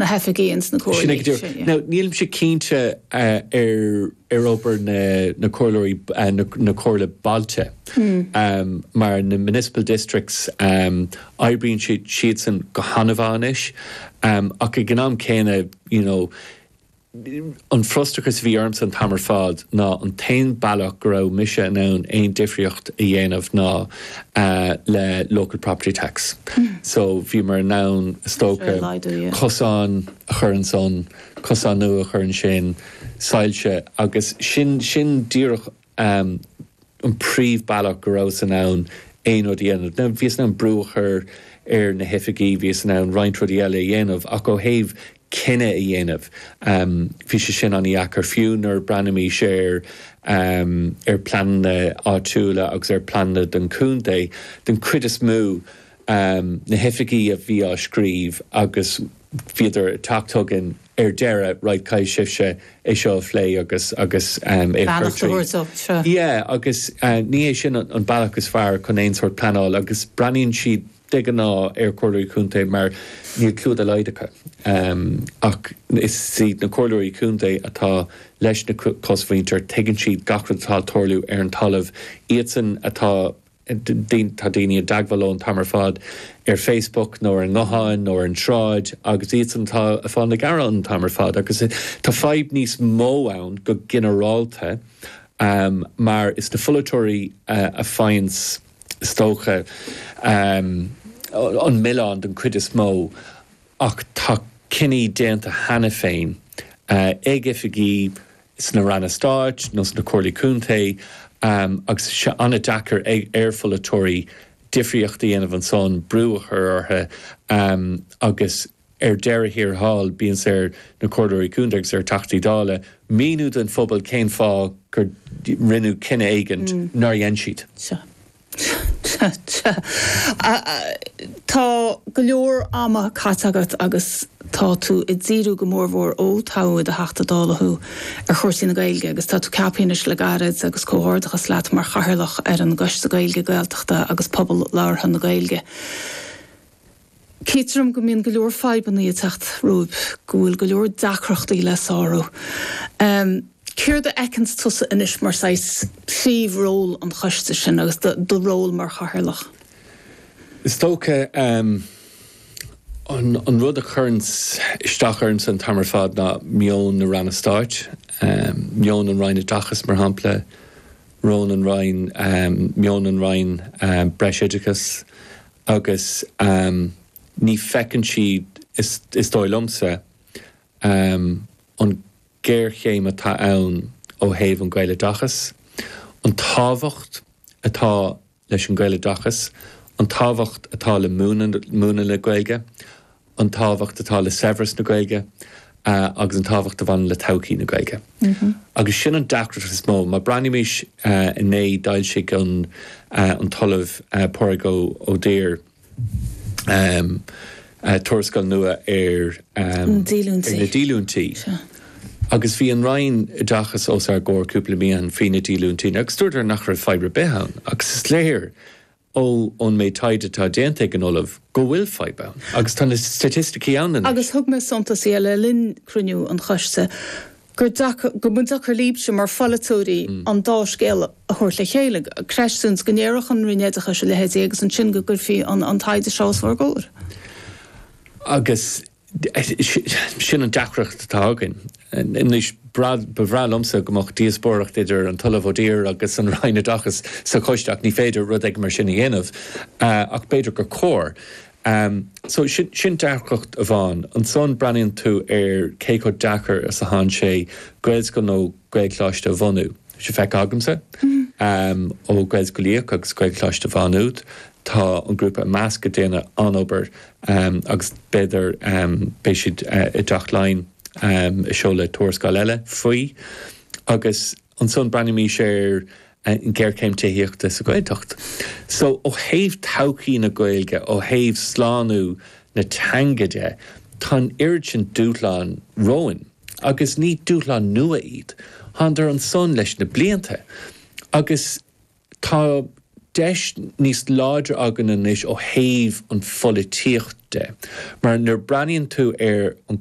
na hoifigí ins na comhairlí sin. Now, nílimse cinnte ar obair na comhairleoirí na comhairlí bailte mar na municipal districts oibríonn siadsan go han-mhaith anois ach ag an am céanna you know an frustrachas a bhí ormsa an t-am ar fad ná an t-aon bealach go raibh mise in ann aon difríocht a dhéanamh ná le local property tax so bhíomar in ann stoca cosáin a chur ansan, cosáin nua a chur ansin soilse agus sin sin díreach an príomh bealach go rabhas in ann aon rud a dhéanamh ná bhíos in ann brú a chur ar na hoifigigh bhíos in ann roinnt rudaí eile a dhéanamh ach ó thaobh cinneadh a dhéanamh. Bhí sé sin an-deacair fiú nuair a bhreathnaímis ar ar phleananna áitiúla agus ar phleananna den chontae. Den chuid is mó, na hoifigigh a bhí á scríobh agus bhíodar ag teacht chugainn ar deireadh, right, caithfidh sibhse é seo a phlé agus agus é a chur tríd. Beannacht a thabhairt dó seo. Yeah, agus ní hé sin an bealach is fearr chun aon sórt pleanáil agus breathnaíonn siad de ghnáth ar chomhairleoirí contae mar níl clú dá laghad acu ach is iad na comhairleoirí contae atá leis an gcosmhuintir, tuigeann siad gach rud atá ag tarlú ar an talamh. Iadsan atá, tá daoine i dteagmháil leo an t-am ar fad ar Facebook nó ar an nguthán nó ar an tsráid agus iadsan atá ag fáil na gearán an t-am ar fad agus tá fadhb níos mó ann go ginearálta mar is na polaiteoirí a fhaigheanns is dócha, an milleán den chuid is mó ach tá cinní déanta cheana féin ag oifigigh sna Ranna Stáit nó sna Comhairlí Contae agus tá sé an-deacair ar pholaiteoirí difríocht a dhéanamh ansan, brú a chur orthu agus. Ar deireadh thiar thall bíonn sé ar na Comhairleoirí Contae agus ar Theachtaí Dála míniú don phobal cén fáth gur rinneadh cinneadh éigint nár dhein siad. Sea. Sea. Sea. Tá go leor ama caite agat agus tá tú ag díriú go mór mhór, ó toghadh i do Theachta Dála thú, ar chúrsaí na Gaeilge agus tá tú ceaptha anois le gairid agus comhghairdeachas leat mar Chathaoirleach ar an gCoiste Gaeilge, Gaeltachta agus Pobal Labhartha na Gaeilge. Feictear dom go mbíonn go leor fadhbannaí ag teacht romhaibh, go bhfuil go leor deacrachtaí le sárú. Céard a fheiceanns tusa anois mar saghas príomh ról an choiste sin agus do ról mar chathaoirleach? Is dócha an rud a chuireanns isteach ormsa an t-am ar fad ná meon na Ranna Stáit, meon an Roinn Oideachais mar shampla, Roinn an Roinn, meon an Roinn Breisoideachais agus ní feiceann siad, is dóigh liomsa, an géarchéim atá ann ó thaobh an Gaeloideachas, an tábhacht atá leis an Gaeloideachas, an tábhacht atá le múineadh na Gaeilge an tábhacht atá le saibhreas na Gaeilge agus an tábhacht a bhaineann le todhchaí na Gaeilge. Agus sin an deacracht is mó. Má breathnaímis inné, d'fhoilsigh an tOllamh Pádraig Ó Duibhir tuarascáil nua ar na díolúintí agus bhí an Roinn Oideachais os ár gcomhair cúpla mí ó shin faoi na díolúintí agus dúradar nach raibh fadhb ar bith ann. Agus is léir ó ón méid taighde atá déanta ag an ollamh go bhfuil fadhb ann agus tá na staitisticí ann anois. Agus thug mé suntas dhe le linn cruinniú an choiste gur deacair, go mba deacair líbse mar pholaiteoirí an dá scéal a thabhairt le chéile, cresh since, go ndéarfadh an Roinn Oideachais a leithéidí agus ansin go gcuirfí an taighde seo os bhur gcomhair. Agus Sin an deacracht atá againn anois. Ba bhreá liomsa go mbeadh díospóireacht idir an tOllamh Ó Duibhir agus an Roinn Oideachais sa choiste ach ní féidir rud éigin mar sin a dhéanamh ach b'fhéidir gur chóir. So sin deacracht amháin. Ansan breathnaíonn tú ar cé chomh deacair is atánn sé Gaelscoil nó Gaelcholáiste a bhunú. Tá sé feicthe agamsa ó Gaelscoil Uí Fhiaich agus Gaelcholáiste Mhaigh Nuad. Tá an grúpa IMEASC ag déanamh an-obair agus b'fhéidir beidh siad i dTeach Laighean ag seoladh tuarascáil eile faoi. Agus ansan breathnaímis ar an ghéarchéim tithíochta sa Ghaeltacht. So, ó thaobh todhchaí na Gaeilge, ó thaobh slánú na teanga de, tá an oiread sin dúshlán romhainn. agus ní dúshlán nua iad. Thánadar ansan leis na blianta agus tá deis níos láidre againn anois ó thaobh an pholaitíocht de mar nuair breathnaíonn tú ar an